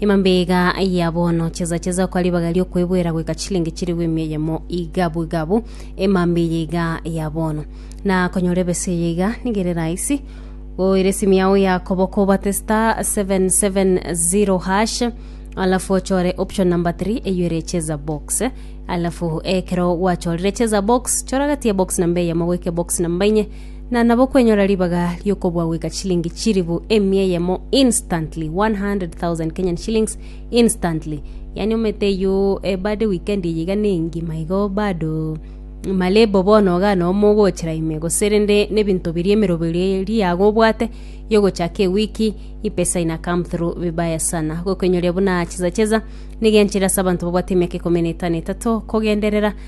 Emambega ya bono, chesa chesa okwa ribaga riokoeboera goika chilingi chiribu emia eyemo iga bwega abwo, emamba eye iga ya bono. Na konyora ebesa eye iga nigo ere rahisi, oire esimu yao ya koboko obate star 770 hash alafu ochore option number 3 eyo ere chesa box alafu ekero gwachorire chesa box chora gati ya box namba eyemo goika box namba inye na nabo kwenyora ribaga ri'okobua goika chilingi chilifu emia eyemo instantly, 100,000 Kenyan shillings instantly. Yani omanyete eyio eh, bado weekend eye iga nengima igo bado malebo bono iga nomo ogochera ime gose rende na ebinto biria emerogo eria eri iyago obwate ya ogochaka ewiki epesa ina come through vibaya sana. Gokoenyoria buna cheza cheza nigo enchera ase abanto babwate emiaka ikomi na etano etato kogenderera.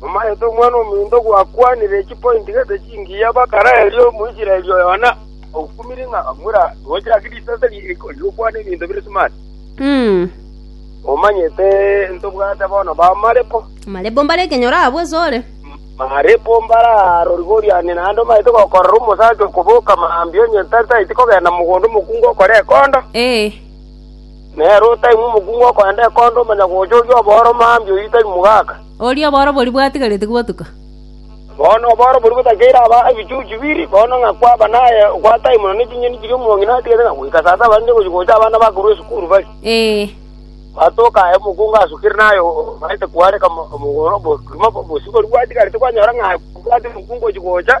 Omaete omwana ominto gwakwanire chipointi gete chingiya bakara erio Omoisraeli oyo Yohana okumire ng'a mura gocha ase risase ri'eriko rigokwana ebinto bire smart. Omanyete ntobwate bono ba Marepo? Marepo mbare ekenyoro aa bweso ore. Marepo mbare aa rorigoriane naende omaete gokorora omosacha okoboka mambia onye tari taeti kogenda mogondo omokungu okore ekondo. Ee. Nere otaimwa omokungu okogenda ekondo omanya gocha oria obooro mambia oyio tari mogaka. Oria oborobori bwatigarete gotuka. Bono oborobori botakeire aba ebichuchu bibiri, bono ng'a kwaba naye ogwataai mono ne chinyeni chiria omong'ina atigete, ng'a goika sasa barinde gochia gocha abana bakorwa esukuru bare. Batoka aye omokungu asukire naye omaete kwareka omogoro, obogima bosibori bwatigarete kwanyora ng'a bwati omokungu ochia gocha.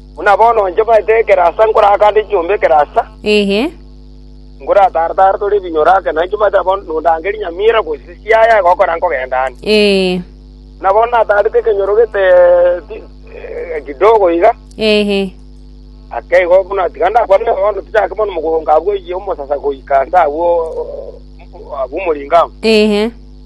Buna bono inche omanyete ekerasa nkorakande chiombe ekerasa, Ehe. nkoratare-tare tore ebinyoro ake, na inche omanyete nabo nondange rinyamira gose chiaya egokora nkogenda aane. Ee. Buna bono natarete ekenyoro gete ti- eh, kidogo iga, Ehe. ake igo buna tiga ndakwane bono tichake bono mogongo abwo oyie omosasa goika nse abwo abwo omoringa amo. Ehe.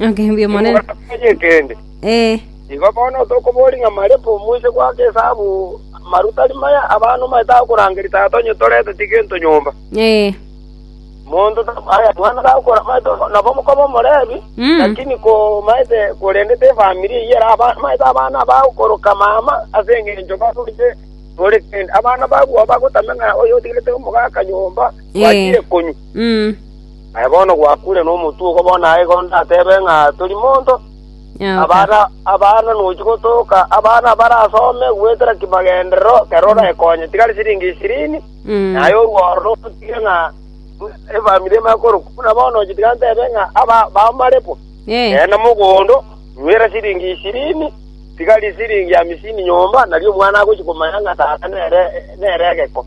Agambia Omonene. Timogataboria ekeende. Eh. Igo bono tokoboria ng'a marepo moise goaka esabu amaru tari maya abana omanyete agokorangeria tata onye toreteti gento nyomba. Eh. Monto ta- aya mwana gakora omanyete nabo omokoba omorebi, Mm. lakini ko omanyete korendete efamiri eyio era aba- omanyete abana bagokoroka mama ase eng'encho baroche tore kende. Abana babu abagotame ng'a oyo otigerete omogaka nyomba Eh. gwachire konywa. Mm. Aye bono gwakuure nomotwe ogo bono aye igo ndatebe ng'a tori monto. Abana abana nochi gotoka abana barasome goetera kimagenderero kerore oraekonye tigari siringi ishirini naye orworo notige ng'a efamiri emanye korokwa buna bono ochi tiga ntebe ng'a aba bamarepwa genda mogondo nwere siringi ishirini tigari siringi hamisini nyomba nario omwana agochi komanya ng'a tata nere nere egeko.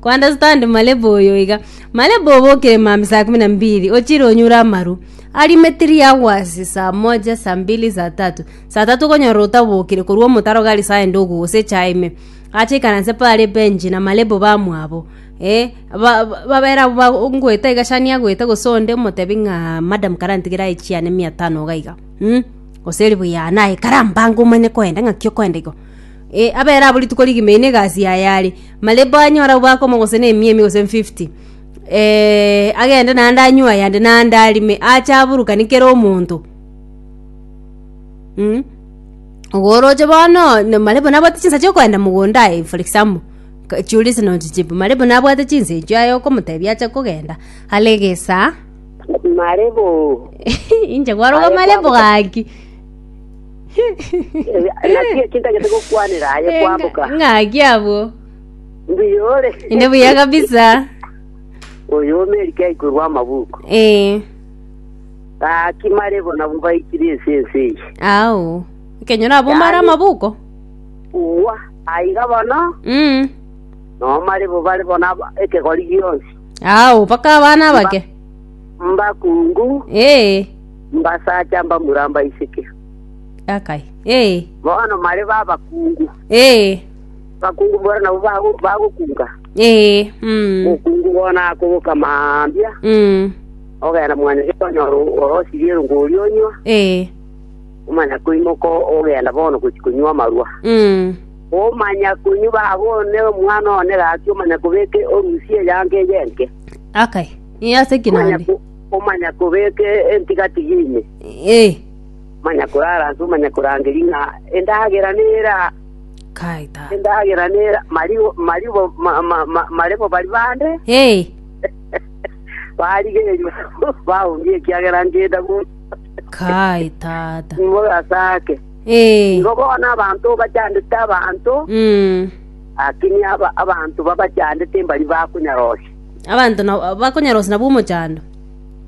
Kuunderstand Malebo oyo iga. Malebo obokire mambia saa kumi na mbili ochire onyure amaru ari metiri hours saa moja saa mbili saa tatu saa tatu okonyora otabokire korwa omotaro gari saa ende ogo gose echae ime ache aikaranse pare ebench na malebo bamwabo eh ba- ba- babere abwo ba- ngoeta iga shani agoeta gose onde omotebi ng'a madam kara ntigera echi yane mia tano iga iga mm? gose ribuyu yane aye kara mbango omanye koenda ng'aki okoenda igo Ee, abere abwo rituko rigima, eye negasi yaye are. Marebo anyore obwakomo gose na emiemi gose emfifty. Ee, agende naende anywe ayande naende arime, ache aburukanie kera omonto. Mh. Igo oroche bono, na marebo nabwate chinsa chiokoenda mogondo aye for example, ka- chiuria ase nonya chichipo, marebo nabwate chinsa echio aye okomotebia ache kogenda, are egesaa. Marebo. Inche kwaroka Aye marebo kwabuka. gaki. Ng'aki eki ntagete gokwanera aye kwamboka. ng'aki abwo Mbuyore. inde buya kabisa Oyo omerike aikorwa amabuku. ee Ng'aki mare bona baikire ense ense eyi. ao nkenyora abo mara Yaani- amabuko Uwa aiga bono mm. nomare bo bare bona aba- ekegori gionsi. ao mpaka abana abake Mbakungu ee Mbasacha mbamura mbaiseke. Akai. Ee. Bono mare babakungu. Ee. Bakungu bono nabo bago- bagokunga. Ee. Mm. Okungu bono akoboka mambia. Mm. Ogenda mwana ase konyora orosirie erungu oria onywa. Ee. Omanya koimoka ogenda bono gochi konywa amarwa. Mm. Omanya konywa babone omwana one gaki omanya kobeke orusia eyange eyenke. Akai. Ee, ase ki Omanya naende? ko- Omanyakobeeka entigatigi ime, omanyakoraransa, omanyakorangeria ng'a endagera nera, endagera nera, maribo mare bo baria bande barigerio baonge ekiagera ngenda gocha, mogasake. Igo bono abanto bachandete abanto, lakini abanto babachandete mbaria bakonyara gocha. Abanto na- bakonyarosia nabwo omochando.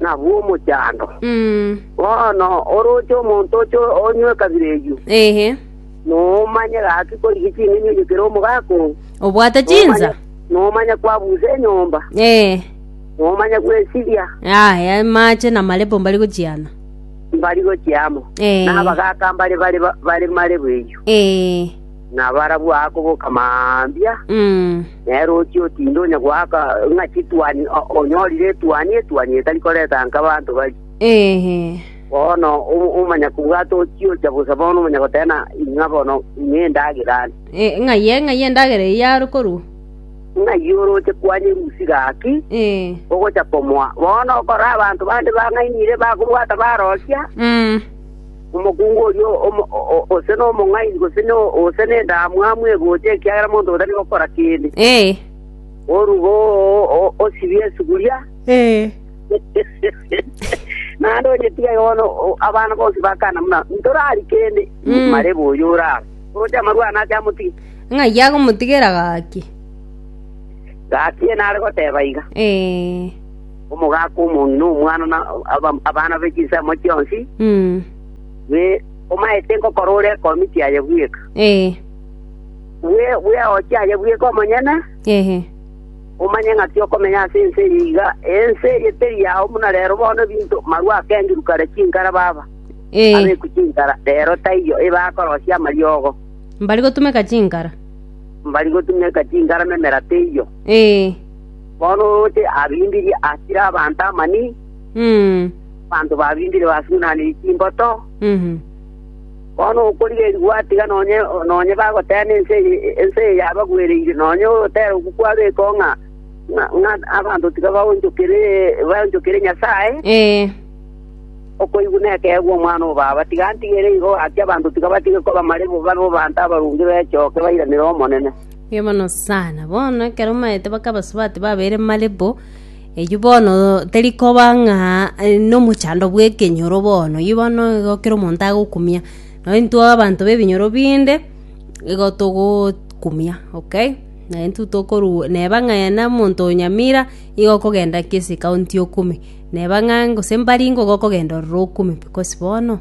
nabwo omochando. Mm. Bono oroche omonto oche onywe ekabira eyio, Ehe. nomanye gaki korigi ching'eni oyio kere omogaka oo, Obwate chinsa? nomanye- nomanye kwabusa enyomba, Eh. nomanye gwesiria Aya mache na marepo mbari gochiana. mbari gochiamo, Eh. nabagaka mbare bare bare marebu eyio. Eh. nabarabwo akoboka mambia, nere ochia otinda onye goaka ng'a chituani o- onyorire etuani, etuani etari koreta nka abanto baria. Bono o- omonyakobwato ochia ocha bosa bono omonyagoteba na ing'a bono ing'a endagera are. ng'ai e- ng'ai endagera eyio yare korwa Ng'ai oroche kwanyerwa usi gaki, ogocha komoa. Bono okora abanto bande bang'ainire bakobwata baroria, Mm. Omokungu oria ose nomong'aini, gose ose nendamwamu egocha, ekiagera monto oyo tari gokora kende. Oruge oo, osibie esuguria, naende onyetige iga bono. Abana bonsi bakana buna, Ntorari kende. Marebe oyo ore aa, oroche amarwani ake amotige. Ng'ai agomotigera gaki? Gaki enare goteba iga. Omogaka omong'ina omwana na abana be chinsemo chionsi, we omaete nkokora ore ekomi chiaye bweka. Bweoche aye bweka omonyene, omanye ng'aki okomenya ase ense eye iga. Ense eye teri yao buna rero bono ebinto marwa akengirwe kare chinkara baba abekwe chinkara, rero taiyo ebe akorosia amariogo. Mbari gotumeka chinkara. Mbari gotumeka chinkara na emera teiyo. Bono oroche abimbiri akire abanto amani, abanto babimbiri basunaniri chimboto. Bono okorigereria gwatiga nonye bagoteena ense eye yabagwereire, nonye ogotera okwo kwabekwa ng'a abanto tiga baonchokire Nyasae, okoigwa nekeegwa omwana o baba. Tiga ntigere igo gaki abanto tiga batige koba marebo, babe abanto abaronge, bechoke bairanere Omonene. Mbuya mono sana. Bono ekero maete baka abasubati babeire malebo, eyio bono teri koba ng'a eh, nomochando bw'ekenyoro bono, eyio bono igo kera omonto agokumia. Nonye intwe abanto b'ebinyoro binde, igo togo kumia, okay? Naye intwe tokorwa neba ng'a aye na omonto o nyamira, igo okogenda kesi ekaunti okume, neba ng'a gose mbaringo igo okogenda ororo okume because bono,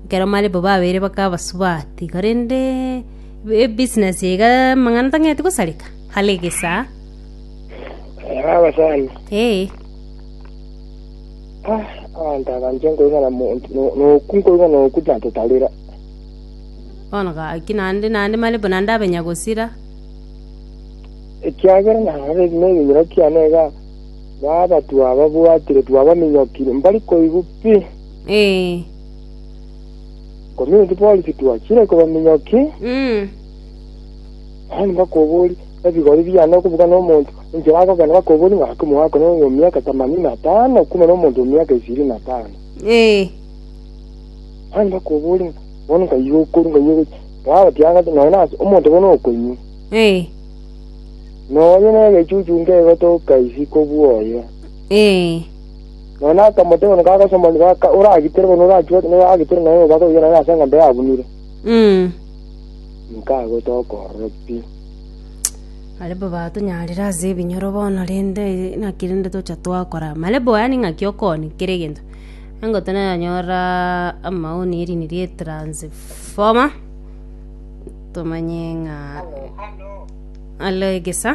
ekero malebo babeire baka abasubati iga rende. Ebusiness eye iga amang'ana tang'eti gosareka are egesaa. Aba abasani. Ee. Ah, abanto aba inche nkoigana monto no- noku nkoigana oku tantotarera. Bono gaki naende naende mare buna ndabenya gosira. Ekiagera narore buna ebinyira kiane iga baba twababwatire twabaminyokire mbari koigwa pi. Ee. Community policy twachire koba minyoki, Mm. naye nibakobori ebigori biane okubuga nomonto enchera agokenda bakobori ng'a ake omogaka no oyo miaka themanini na tano okume nomonto o miaka ishirini na tano. Eh. Naye nibakobori ng'a bono nkai okoru nkai okoru. Baba tiagate nonya nase omonto bono okonywa. Eh. Nonya negechuchu ngegotoka isiko bwoye. Eh. Nonya akamoteeba ng'a agosomani gaka oragitere bono orachwete na oragitere nonya obobaga oyio nere ase eng'ombe yabunire, Mm. inka agocha okoorora pi. Barabwo batonyarire ase ebinyoro bono rende naki rende tocha twakora. Marabwo yaani ng'aki okoni kera egento. Engo tonyanyorora amaoni erini rie transfoma. Tomanye ng'a. Alo egesa.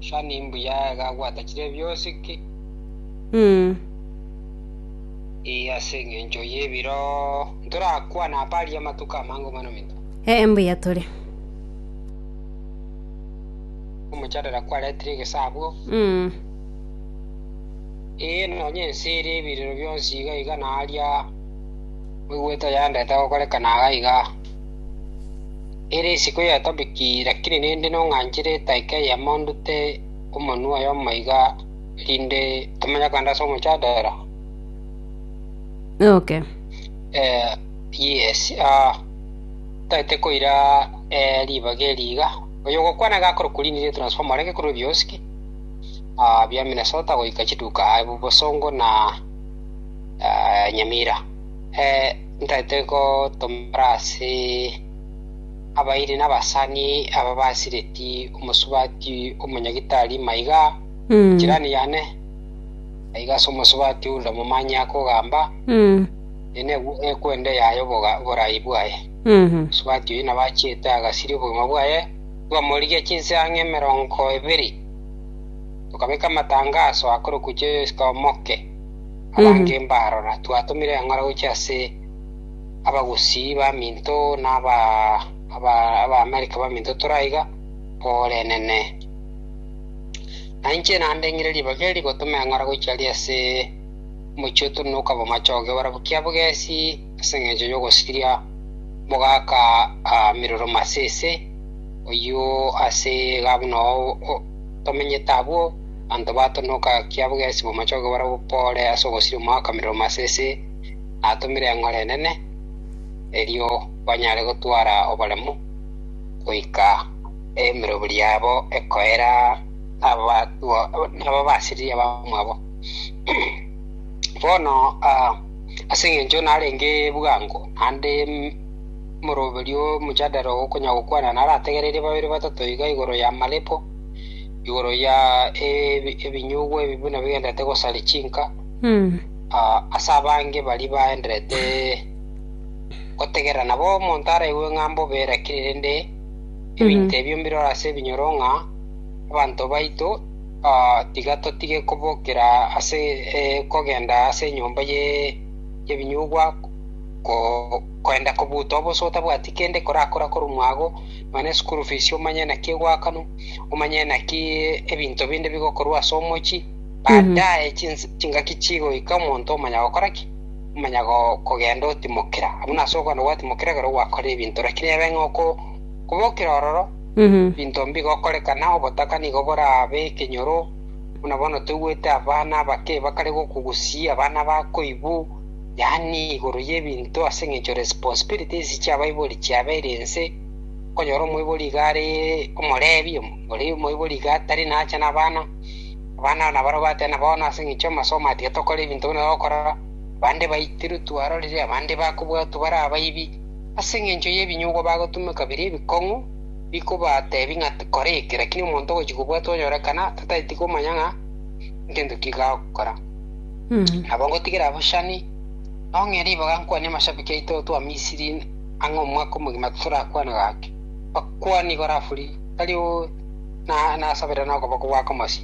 Sha ni mbuya iga agwatachire bionsi ki? Ee, ase engencho y'ebiro ntorakwane apa aria amatuko amange mono minto. Ee, mbuya tore. Omochandera kwaretire egesaabwo. Mm. Ee, nonya ense ere ebirero bionsi iga iga na aria moigwete oyandete gokorekana iga iga. Ere isiko ya Tabiki, lakini ninde nong'anchire etaika eye amo ndute omonwa oye omaiga, erinde tomanye kande ase omochadera. Okay. Eh, yes, ah, taete koira eh, ribaga eri iga. Oyo gokwana iga akore kurindi ne transformer areke kurwe biosiki. Ah, bia Minnesota goika chiduka ah, bosongo na ah, Nyamira. Eh, Ntaete gotomora ase abairi na abasani aba basireti omosubati omonyagitari maiga jirani yane, aiga ase omosubati onde omomani akogamba, Eye negwe ekwenda eyaye oborai bwaye. Omosubati oyio nabo achiete agasiria obogima bwaye, twamorigia chinseng'e emerongo ebere, tokabeka amatangaso akorokwa Chesika Omoke. Abange mbarora, twatomire eng'ora gochia ase abagusii baminto na Abaamerika baminto tore aiga, borenene. Na inche naende ng'ire ribaga eri rigotoma eng'ora gochia aria ase omochie oto na okabamachoge barabwo kia bogesi ase engencho y'ogosiria mogaka miroro masese, oyio ase iga buna tomenyete abwo, Abanto bato nokakia bogesi bw'amachoge barabwo Kore ase ogosiria omwaka merero masese natomire eng'ora enene, erio banyare gotwara oboremu goika emeroberi yabo ekoera nababasiriri abamwabo. Bono ase engencho narenge bwango, naende moroberi omojadare ogokonyagokwana narategereirie babere batato iga igoro y'amarebo, igoro ya ebi- ebinyugwa ebi buna bigenderete gosaria chinka, Mm. ah, ase abange baria baenderete gotegerera. Nabo omonto araigwe ng'a mbobe erakire, rende ebinto ebio mbirore ase ebinyoro ng'a abanto baito ah, tiga totige kobokera ase eh, kogenda ase enyomba ye y'ebinyugwa ko- koenda kobuta obosa otabwati kende korakora korwa mwago, Manya eschool fees, omanye naki egoakanwa, omanye naki ebinto binde bigokorwa ase omochie, baadaye chinsa chingaki chigoika omonto omanya gokora ki? Omanya go kogenda otimokera. Abuna ase okogenda gwatimokera ekero gwakora ebinto lakini ebe ng'a oko kobokire ororo ebinto mbigokorekana, obotaka nigo borabe ekenyoro, buna bono toigwete abana abake bakare gokugusia, abana bakoibu, yaani igoro y'ebinto ase engencho responsibility ase chiabaibori chiabeire ense, okonyora omoibori iga are omorebi, oria omoibori iga tari nacha nabana, abana nabarabwo bateba na bono ase engencho y'amasomo aya tiga tokora ebinto buna bagokorora, abande baitirwe twarorire, abande bakobwatwa bare abaibi, ase engencho y'ebinyugwa bagotumeka biria ebikong'u, bikobatebi ng'a kora eke, lakini omonto ogochi kobwatwa onyorekana, tatageti komanya ng'a, ngento ki iga agokora. Nabo ngotigere abwo Shani, nong'e riboga nkwane amashabiki aito gotoa Misiri ang'e omwaka omogima torakwana gaki, bakwane igoro afuri, tari o na nasabera nokoboko gwa komosi.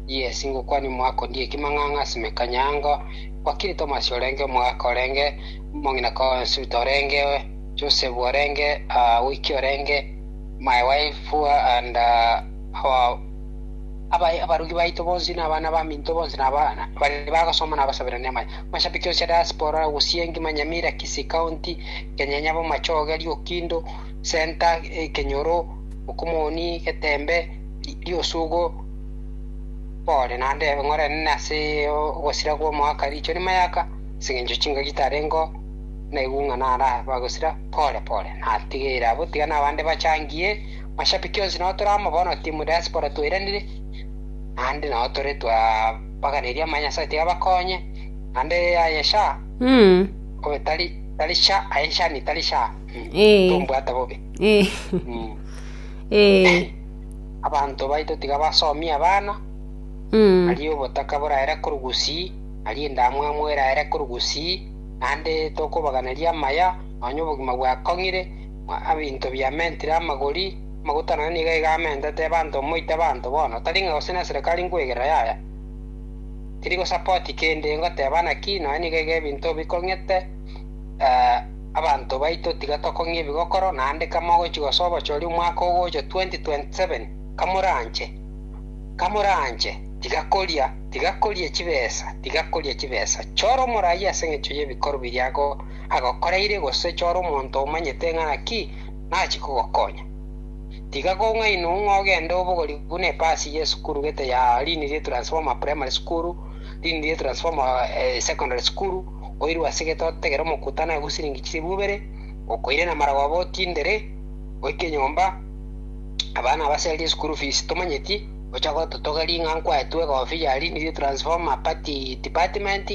Yes, ngokwane omwaka ondie ekimang'ang'a ase mekanyango, wakiri Thomas orenge, omogaka orenge, omong'ina Consuta orenge, Joseph orenge, ah, Wiki orenge, my wife and uh, our Abae abarugi baito bonsi na abana baminto bonsi na abana baria bagosoma na abasaberani amache. Mashabiki onsi a diaspora, Ogusiengi, Manyamira, Kisii County, Kenyenya, Bomachoge, Liokindo, Centre, Kenyoro, Mokomoni, Getembe, Liosugo, Pole naende ebeng'orene ase ogosira kw'omoaka riicho rimayaka ase engencho chingaki tarengeo naigung'ana ara bagosira pore pore. Natigeire abwo tiga nabande bachangie. Mashabiki onsi nao tore amo bono timu diaspora twairanire naende nao tore twabaganeria amaya Nyasae tiga bakonye naende aye sha Mm. obe tari tari sha aye sha ni tari sha Mm. Eh. tombwata bobe Eh. Mm. Eh. abanto baito tiga basomie abana Mm. nari obotaka boraere korwa gusii nari endamwamu eraere korwa gusii naende tokobaganeria amaya nonya obogima bwakong'ire Ng'a ebinto biamentire amagori, amaguta naende nigo iga amentete ebanto moite abanto bono, tari ng'a gose neserekari nkwegerera yaya. Tiri gosapoti kende, ngoteba naki, nonya nigo iga ebinto bikong'ete abanto baito tiga tokong'ia ebigokoro, naende kama ogochi gosoa obochori omwaka ogocha 2027, kamoranche, kamoranche, tiga koria, tiga koria chibesa, tiga koria chibesa. Chora omorai as'eng'encho y'ebikoro biria ago. agokoreire gose chore omonto omanyete ng'a naki nachie kogokonya. Tiga kong'ainwe ng'a ogende obogori buna epasi y'esukuru gete ya Linirie Transformer Primary School, Linirie Transformer Secondary School, oirwe ase gete otegere omokutano aye bwa siringi chilifu ibere, okoire na maragwa abo otindere, oike nyomba, abana abasererie school fees tomanyeti, ocha gototogeria ng'a nkwaetwe egofi ya Linirie Transformer Party Department,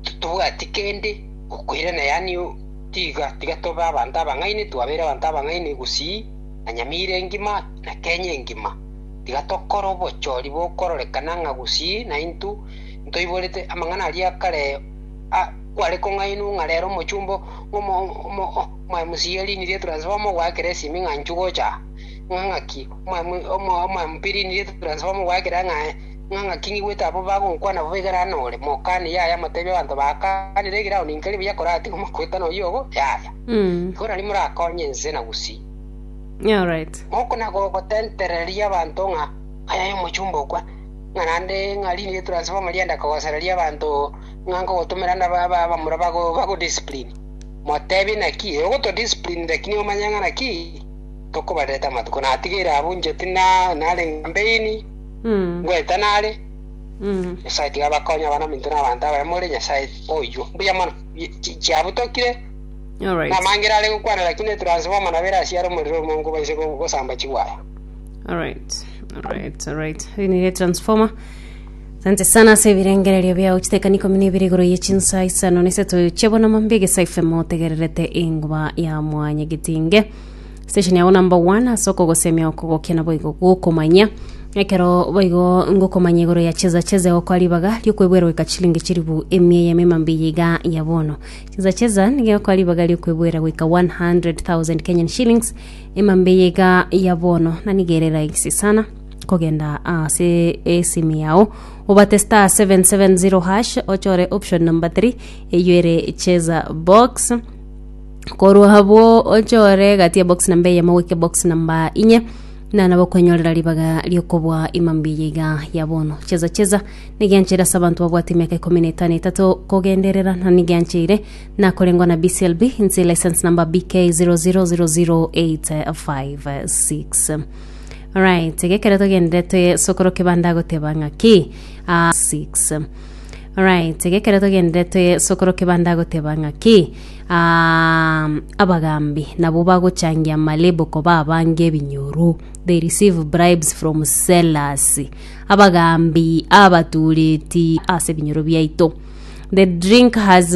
totobwati kende gokoirana, yaani tiga tiga tobe abanto abang'aini, twabeire abanto abang'aini gusii na nyamira engima na Kenya engima. Tiga tokore obochori bokororekana ng'a gusii naintwe ntoiborete amang'ana aria akare a kware kong'ainwa ng'a rero omochumba omo omo omwMCA e riini rietu Transformer ogoakera esimi ng'a inchugocha aa. Ng'a ng'aki omwMP riini rietu Transformer ogoakera ng'a. Ng'a ng'aki nigo goeta abwo bagonkwana bobe igare aa nore, mokani, Yaya, motebie abanto baakanire egere ao ninkeri buya koratiga omokueta noyio obo, Yaya. Nigo nari morakonye inse na gusii. Alright. Moko na gogotentereria abanto ng'a aya yomochumba okwa, ng'a naende ng'a rinde ye transformer rienda kogosereria abanto ng'a nkogotomera nda ba- ba- bamura bago bagodiscipline. Motebie naki ee ogotodiscipline lakini omanye ng'a naki tokobarerete amatuko. Natigeire abwo inche tina narenge mbeini. Ngoeta nare. Nyasae tiga abakonye abanaminto na abanto abaye more Nyasae oyio. Mbuya mono. Chiabu tokire. Namangere are gokwana lakini etransformer nabo ere asia are omorero omonge obo inse gosamba chiwaya. Alright, alright, alright. Hii ni transformer. Asante sana ase ebirengererio biao chitekani ikomi na ibere igoro ye chinsa isano na isato chiabona mambe gesa FM otegererete enguba ya mwanya getinge Session yao number one ase okogosemia oko gokia naboigo gokomanyia ekero boigo ngokomanya igoro ya cheza cheza egokwa ribaga riokwebwera goika chilingi chiribu emia ya mema mbiya iga ya bono cheza cheza niga egokwa ribaga riokwebwera goika 100,000 Kenyan shillings ema mbiya iga ya bono na niga ere rahisi sana kogenda ase esimu yao obate star 770 hash ochore option number 3 eyo ere cheza box Korwa abwo ochore egati ya box namba eyemo goika box namba inye na nabo kwenyorera ribaga riokobua imambi eye iga ya bono cheza cheza nigiancheire ase abanto babwate emiaka ikomi na etano etato kogenderera na nigiancheire nakorengwa na BCLB inse license number BK 0000856 right gekero togenderete sokoro kebanda agoteba ng'aki ah, 6 right gekero togenderete sokoro kebanda agoteba ng'aki Ah, abagaambi nabo bagochangia malebo koba abange ebinyoru. They receive bribes from sellers. Abagaambi abatuureti ase ebinyoro biaito. The drink has